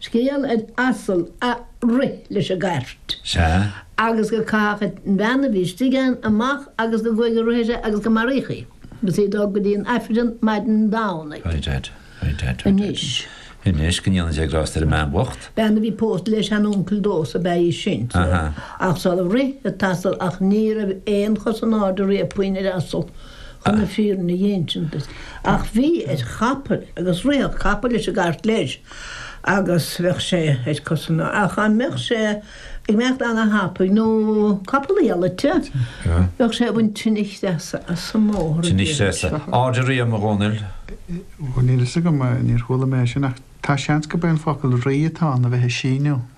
Scéal ar asal a rith leis an gcairt. Sea, agus go caitheadh an bhean a bhí istigh ann amach agus go gcuaigh an roth uirthi agus go maraíodh í agus í ag dul go dtí an Aifreann maidin Domhnaigh. Right, right, right, right. Anois. Anois, go ndéana Dia grásta ar an mbean bhocht. Bean a bhí pósta le seanuncail domhsa ab ea í sin. Aha. Ach is amhlaidh a rith an t-asal ach ní raibh aon chos in airde riamh puinn ar asal chun na fírinne a insint duit. Ach bhí ar chapall agus ritheadh capall leis an gcairt leis. agus bheadh sé ar cos in airde dá mbeadh sé ag imeacht ana-thapaidh nó capall iallaite bheadh sé ag baint tine chreasa as an mbóthar. Tine chreasa. Aird aréir a Dhomhnaill. Bhuel níl a fhios agam, níor chuala mé é sin ach tá seans gurb é an focal 'rí' atá ann a bheith ag síneadh.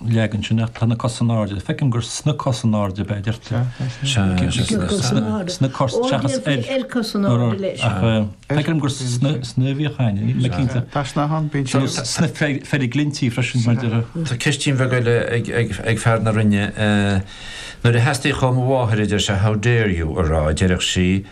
leagan sin ach tá sna cosa in airde. Feicim gur sna cosa in airde a deirtear. Sna cosa seachas ar. Ar cosa in airde leis. Ach feicim gur sna a bhíodh ann. Níl mé cinnte. Taisneáchán, bíonn sé. Sna feiriglinntí freisin mar a déarfá. Tá ceistín bheag eile ag fear na Rinne. Nuair a theastaíodh ó mo mháthair a deir sé 'How dare you' a rá deireadh sí.